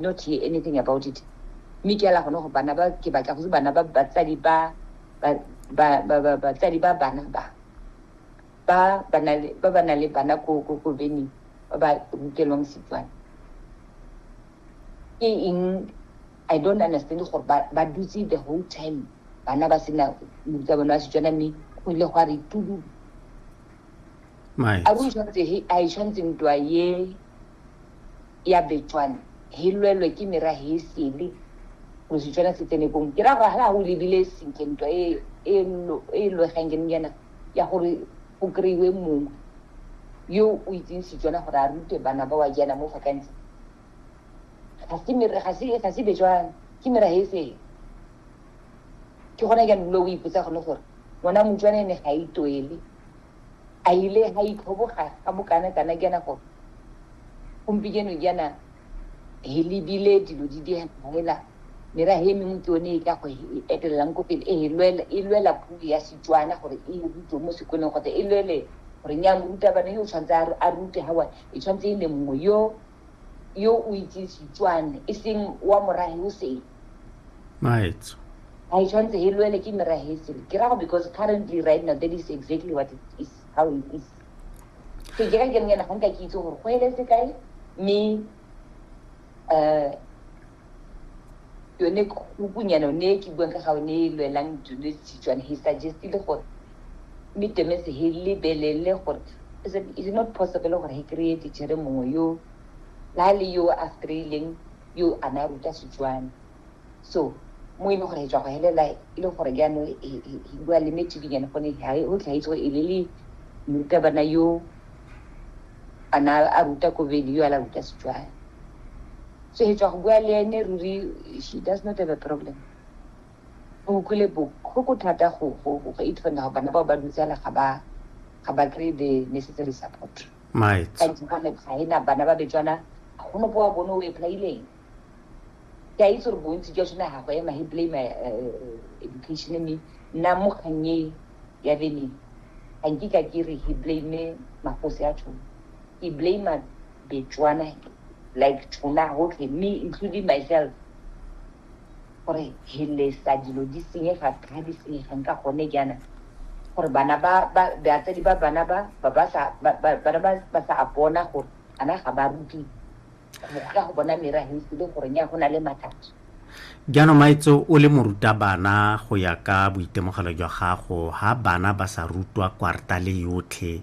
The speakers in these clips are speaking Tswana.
not hear anything about it mme ke ela gone go bana ba ke batla go se bana ba batsadi ba batsadi ba bana ba ba ba na le bana ko bening ba ba rutelwang setswana ke eng i don't understand gore ba dutse the whole time bana ba sena moruta bone wa setswana mme go ile go a re tudu a re o tshwanetse he a e tshwanetseng twa ye ya Betswana hi lwelwe ki mira hi sili mu Setswana se tsene kong ke ra gore hala go lebile sentle ntwa e e, e lwegang ke nyana ya gore go kry-iwe mongwe yo o itseng Setswana gore a rute bana ba wa jaana mo fakantsi ga se mira ga se ga se Betswana ke mira he sele ke gona jaanong lo o ipotsa gone gore ngwana motswane ne ga itoele A ile ha itlhoboga ga bokana kana kana gore gompieno jaana he lebile dilo di di hela merahe e mengwe ke yone e ka go e etelelang ko pele e lwela e lwela puo ya Setswana gore e rutwe mo sekolong kgotsa e lwele gore nya morutabana yo o tshwanetse a rute ga wa e tshwanetse e ne mongwe yo yo o itseng setswane e seng wa morage o seng maetso ga e tshwanetse e lwele ke meragetseng ke rago because currently right now that is exactly what it is how it is so ke ka ke nngena ga nka ke itse gore go eletse kae mme um yone kukunyana ne e ke buang ka ga one e lwelang tsone setswana he suggestile gore mme temese he lebelele gore is it, is it not possible gore he kry-e tichere mongwe yo la le yo a streileng yo a ne a ruta setswana so mo e leng gore e tswa go helela e le gore jaano bua le metedinyane gone o tlhaetse gore e le le morutabana yo a ne a ruta kobedi yo a la ruta setswana so he tswa go bua le ene ruri she does not have a problem o utlwile botlhoko thata go go go itfona go bana bao ba dutsela ga ba ga ba kry the necessary support ga ena bana ba betswana ga go nopo wa bone o eplaileng ke a itse gore bontsi jwa sone ga go ema he blame eh, eh, education me nna mo kgannye ya veneng ga nkika ke re he blame magosi a tshone ke blame Betswana like tuna hotlhe me including myself gore he lesa dilo di senyega ga di senyegang ka gone jaana gore bana ba batsadi ba bana ba ba ba sa bana ba ba sa bona gore ana ga ba ruti go ka go bona mera he se le gore nya go na le mathata jaanong maitse o le morutabana go ya ka boitemogelo jwa gago ga bana ba sa rutwa kwarta le yotlhe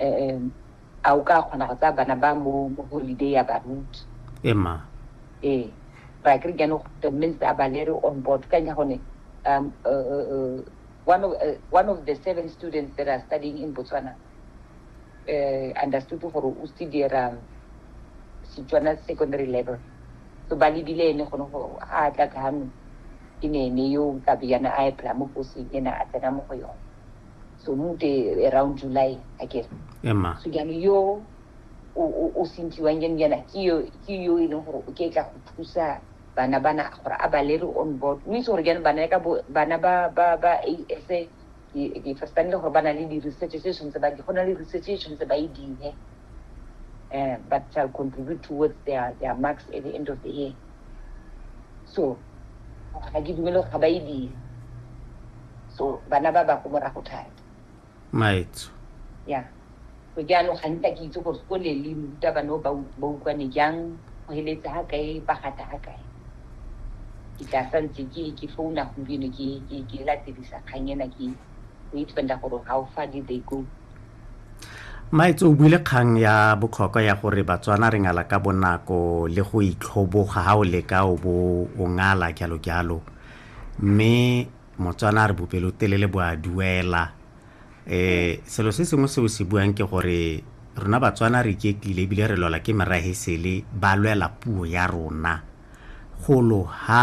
um a o ka kgona go tsaya bana ba mo mo holiday ya baruti ema ee ra kere jaanong the minst a balere on board ka nya gone um uh, uh, uh, one of uh, one of the seven students that are studying in Botswana uh, understood gore o studiera Setswana secondary level so ba lebile ene gone go a tla ka hano e ne ene yo ka beyana a epela mo poseng ena a tsena mo go yone so mo ke around july a kere ema so jaanong yo o- o- o sentiwang jaanong jaana ke yo ke yo e leng gore o ke tla go thusa bana bana gore a ba lere on board o itse gore jaanong bana ka bo- bana ba ba ba asa ke ke firstane le gore ba na le di-research tse tshwanetse ba di go na le research e tshwanetse ba e dire um but shall contribute towards their their marks at the end of the year so ga ke dumele gore ga ba e dire so bana ba ba ko morago thata maetso ya so jaanong ga nta ke itse gore ko le le ruta bano ba utlwane jang go heletse ga kae ba gata ga kae ke tla sa ntse ke ke founa gompieno ke ke ke latedisa kgang ena ke go itfenda gore how far did they go maetse o buile kgang ya bokhokwa ya gore batswana re ngala ka bonako le go itlhoboga ga o leka o bo o ngala jalo jalo mme motswana a re bopelotelele bo a duela um selo se sengwe seo se buang ke gore rona batswana re iketlile ebile re lwela ke merage sele ba lwela puo ya rona golo ha